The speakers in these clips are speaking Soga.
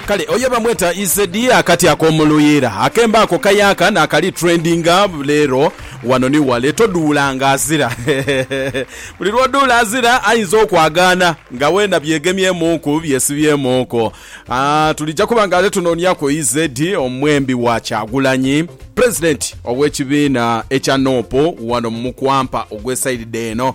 Kale oyo bamweta EZ akati ak'omu luyiira akemba ako kayaaka naakali trendinga leero wano ni wale. Toduula nga azira hehehe buli lw'oduula azira ayinza okwagaana nga weena byegemyemuuku byesibyemuuku. Aah tulija kuba nga ate tunooniaku EZ omwembi wa Kyagulanyi. Pulezidenti ow'ekibiina ekya nup wano mu mukwampa ogw'esaidi eno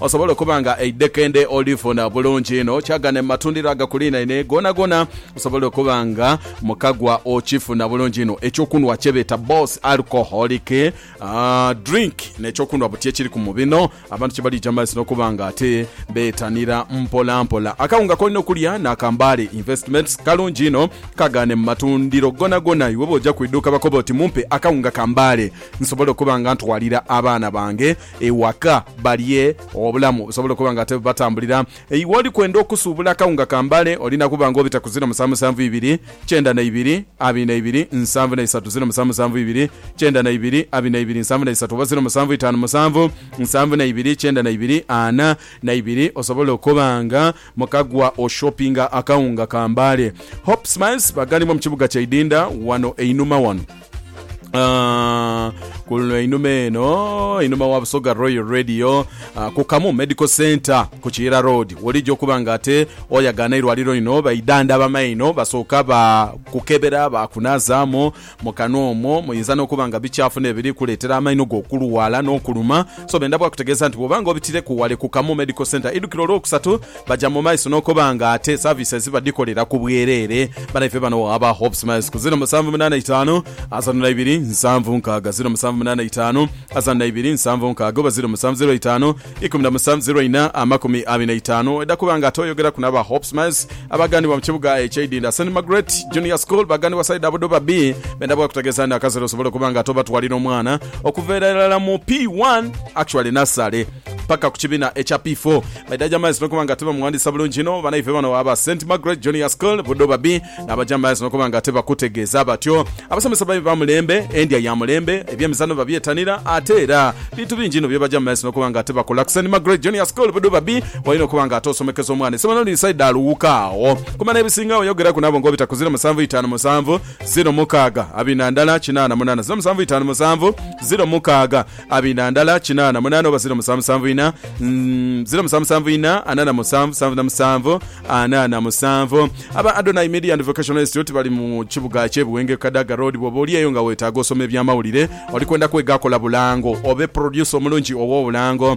Osobole okuba nga eidhekende olifuna bulungi inho, kyagane mu matundiro agakuliinaine goonagoona osobole okuba nga mukagwa okifuna bulungi inho. Ekyokunhwa kye beeta Boss Alcoholic Drink n'ekyokunhwa buti ekiriku mu bino abantu kye balija mu maiso n'okuba nga ate beetanira mpolampola. Akawunga k'olina okulya ni aka Mbale Investments, kalungi inho. Kagane mu matundiro goonagoona. Iwe bw'oja ku idhuuka bakobe oti mumpe akawunga ka Mbale nsobole okuba nga ntwalira abaana bange. Ewaka balye obulamu busobole okuba nga tebubatambulira. Iwe oli kwenda okusuubula akawunga ka mbale olina kuba nga obita ku ziro musanvu musanvu ibiri, kyenda na ibiri, abiri na ibiri, nsanvu na isatu, ziro musanvu musanvu ibiri, kyenda na ibiri, abiri na ibiri, nsanvu na isatu, oba ziro musanvu itaanu musanvu, nsanvu na ibiri, kyenda na ibiri, ana na ibiri osobole okuba nga mukagwa oshopinga akawunga ka mbale. Hope Smiles bagalimu mu kibuga kya Idinda wano einhuma wano. Ah, ku luno einhuma eno einhuma wa busoga royal radio ah, ku kamu medical center ku kiyira road wolija okuba nga ate oyagaana eirwaliro lino baidanda bamaino basooka bakukebera bakunazaamu mu kanwa omwo muyinza n'okuba nga bikyafu n'ebiri kuleetera amaino go okulwala n'okuluma so benda bwakutegeeza nti bwoba nga obitireku wale ku kamu medical center idukiro olwokusatu Baja mu maiso n'okoba nga ate services badikolera ku bwerere banaife bano aba Hope Smiles ku ziro musanvu munana itaanu asatu na ibiri nsanvu nkaaga ziro musanvu munana itaanu asatu na ibiri nsanvu nkaaga oba ziro musanvu ziro itaanu ikumi na musanvu ziro ina amakumi abiri na itaanu. Oidha kuba nga ate oyogeraku n'aba Hope Smiles abagambibwa mu kibuga ekye Idinda Saint Margaret Junior School bagambibwa side abo do babbi benda bwakutegeeza ni akasera osobole okuba nga ate obatwalira omwana okuva irala mu P one actually nassale paka ku kibina ekya P four. Baidha Jamaiz nokuba nga tibamughandiisa bulungi inho banaife bano aba Saint Margaret Junior School Budo Babi n'aba Jamaiz nokuba nga tibakutegeeza batyo. Abasomesa babi ba mulembe, endya ya mulembe, eby'emizaano babyetanira ate era bintu bingi inho by'aba Jamaiz nokuba nga tibakola. Ku Saint Margaret Junior School Budo Babi walina okuba nga ate osomekeza omwana esomero liri saidi alughuka agho. Kuma n'ebisingagho yogeraku nabo nga obita ku ziro musanvu itaanu musanvu ziro mukaaga abina ndala kinaana munaana ziro musanvu itaanu musanvu ziro mukaaga. Abina ndala kinaana mu naana oba ziro musanvu musanvu ina, mm, ziro musanvu musanvu ina, ana na musanvu, sanvu na musanvu, ana na musanvu. Aba Adonai Media and Vocational Institute bali mu kibuga kye Buwenge ku Kadaga Road. Bwoba oli eyo nga wetaaga osoma ebyamawulire, olikwenda kwega kola bulango, obe producer omulungi ow'obulango,